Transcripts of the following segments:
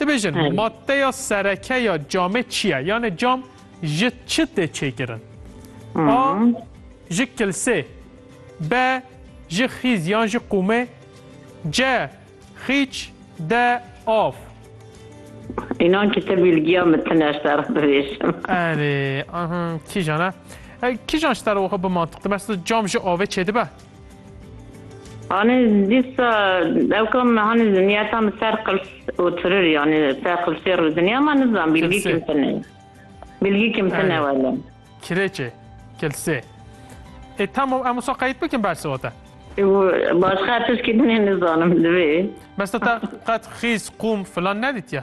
Dibêjin maddeya sereke ya camê çi ye? Yanê cam ji çi tê çêkirin? A. Ji kilsê B. Ji xîz yan ji qûmê C. Xîç D. Av Înan ki te bilgiya min tune ji te re bibêjim. Erê, aha, kîjan e? Kîjan ji te re wiha bi mantiq dibe? Cam ji avê çêdibe? Anê dîsa ew kam hanê zinyata min ser qirs û tirir yanê ser qirsê rûziniya ma nizan bilgî kim tine bilgî kim tine wele. Kirêçê, kilsê. Ê tamam em wisa qeyît bikin bersê we te. Başqa tişkî din ê nizanim divê. Bes te te qet xîz, qûm filan nedîtiye?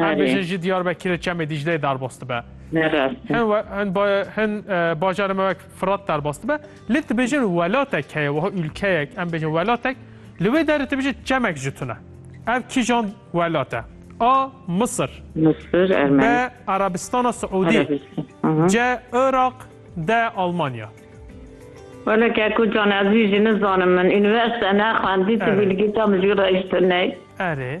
Erdbêjê jî Diyarbekirê Çemê Dîcleyê derbas dibe. Hin bajarê me wek Firat derbas dibe. Lê dibêjin welatek heye wiha ûlkeyek em bêjin welatek li wê derê dibêjin çemek ji tune. Ev kîjan welat e? A. Misir B. Erebistana Siûdî C. Iraq D. Almanya Wele ke ku can ez jî nizanim min. Universite nexwendî tu bilgîta min jî rejtine. Erê.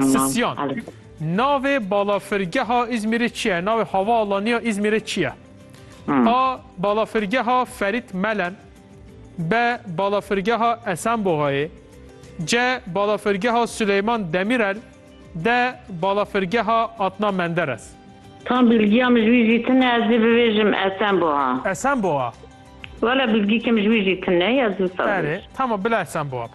Sisyan, Navê balafirgeha Îzmîrê çi ye? Navê havaalanîya Îzmîrê çi ye? A. Balafirgeha Ferît Melen B. Balafirgeha Esenboxayê C. Balafirgeha Suleyman Demîrel D. Balafirgeha Adna Menderes Tam bilgiya min ji wî jî tune ez ê bibêjim Esenboxa. Esenboxa? Wele bilgîkê min ji wî jî tune ye ez wisa bibêjim. Erê, tamam bila Esenboxa.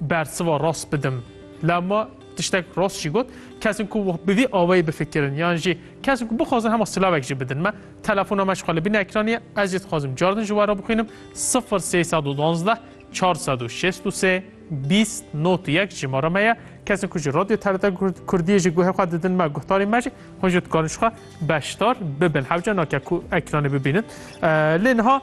bersiva rast bidim. Lewma tiştek rast jî got, kesên ku bi vî awayî bifikirin yan jî kesên ku bixwazin hema silavek jî bidin me. Telefona me ji xwe li bin ekranî ye, ez jî dixwazim car din ji we re bixwînim sifir sê sed û duwazdeh çar sed û şêst û sê bîst not û yek jimara me ye. Kesên ku ji Radyo TRT Kurdiyê jî guhê xwe didin me guhdarên me jî hûn jî dikarin ji xwe beşdar bibin. Hewce nake ku ekranê bibînin. Lê niha